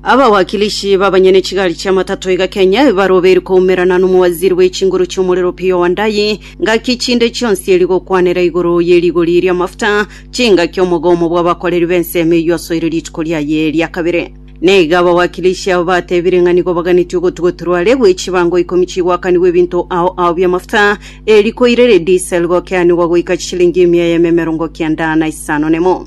Abawakilishi b'abanyene chigari chi'amatato iga Kenya ebarobeirwe koumerana n'omowaziri bwe chinguru chi'omorero Opiyo Wandayi ngaki chinde chionsi eri gokwanera igoro ye rigori ri'amafuta chingaki omogomo bw'abakoreri b'ensemo eyio asoire rituko riaye ria kabere. Na iga abawakilishi abo batebire ng'a nigo baganetie ogotugoterwa are gwe chibango ikomi chigwakanigwe ebinto ao ao bi'amafuta, eriko irere diesel gokeanigwa goika chishilingi emia y'ememe erongo kenda na isano nemo.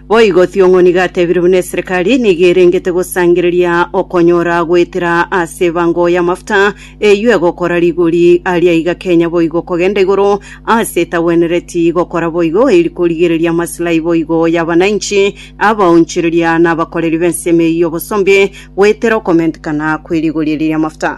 Boigo Thiong'oni gatebire buna eserekari nigo erengete gosangereria okonyora goetera ase ebango y'amafuta eyio egokora rigori aria iga Kenya boigo kogenda igoro ase etagwenereti gokora boigo eri korigereria amaslahi boigo y'abanainchi, abaonchoreria na abakoreri b'ensemo eyio y'obosombe goetera okomentekana kwe rigori eri ri'amafuta.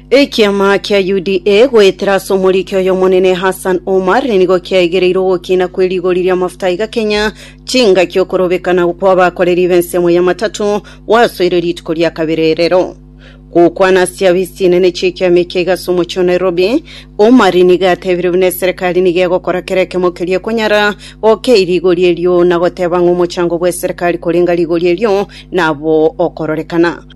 Ekiama kia UDA goetera ase omoriki oy'Omonene Hassan Omar nigo kiaigereire ogokina kwe rigori ri'amafuta iga Kenya, chingaki okorobekana kw'abakoreri b'ensemo ya matatu gwasoire rituko ria kabere erero. Gokwana ase chiafisi chinene chi'ekiama eke iga ase omochie o Nairobi, Omar nigo atebire buna eserekari nigo egokora kera ekemo keria ekonyara gokei rigori erio na goteba ng'a omochango bw'eserekari koreng'a rigori erio nabo okororekana.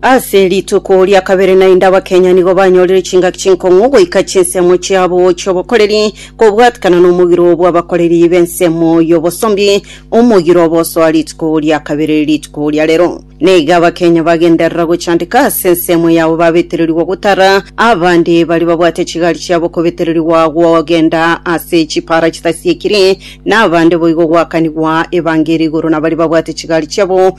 Ase rituko ria kabere naende Abakenya nigo banyorire chingaki chinkong'u goika chinsemo chiabo chi'obokoreri kobwatikana nomogiro bw'abakoreri b'ensemo y'obosombi, omogiro obosoa rituko ria kabere rituko ria rero. Naiga Abakenya bagenderera gochandeka ase ensemo yabo babetererigwa gotara abande baria babwate chigari chiabo kobetererigwa gogenda ase chipara chitasiekiri, na abande boigo goakanigwa evangeri igoro nabaria babwate chigari chiabo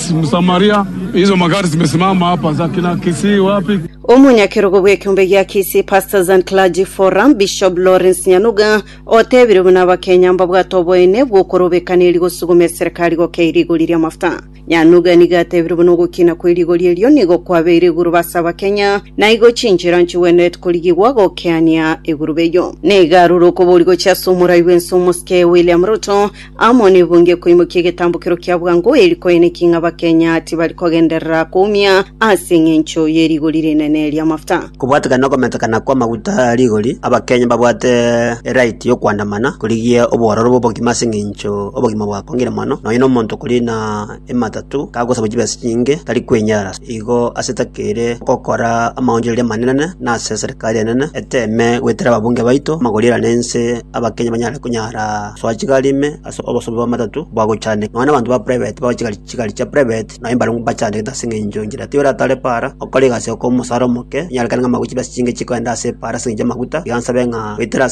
Omonyakerogo bw'ekeombe gia Kisii, Pastors and Clergy Forum, Bishop Lawrence Nyanuga, otebire buna Abakenya mbabwate oboene bw'okorobekana erio gosuguma eserekari gokeire igori ri'amafuta. Nyanuga nigo atebire buna ogokina kwe rigori erio nigo kwabeire eguruba ase Abakenya, na igo chinchera nchigwenerete korigigwa gokeania eguruba eyio. Nigo arure okobori gochia ase omorai bw'ense omosike William Ruto, Amo nebonge koimokia egetambokero kia bwango eri koene ki ng'a Abakenya tibari kogenderera koumia ase engencho ye rigori rinene ri'amafuta. Kobwatekana nokometekana kwa maguta a rigori, Abakenya mbabwate eright yokwandamana korigia obororo bw'obogima ase engencho obogima bwakongire mono, nonya nomonto okoriina ematatu kagosabu chibesa chinyinge tari kwenyara. Igo ase takeire gokora amaonchoreria amanene, na ase eserekari enene eteme goetera ababunge baito amagori erane ense, Abakenya banyare konyara gosoa chigari ime ase obosobi bw'amatatu bwa gochandeka. Nonya na abanto ba private bagochia chigari chigari chia private nabo mbare mbachandegete ase eng'encho enchera tiga oratare para okore egasi okobaa omosara omoke, onyarekane ng'a amagochi base chinke chikogenda ase para ase eng'encho y'amaguta, iga nsabe ng'a goetera ase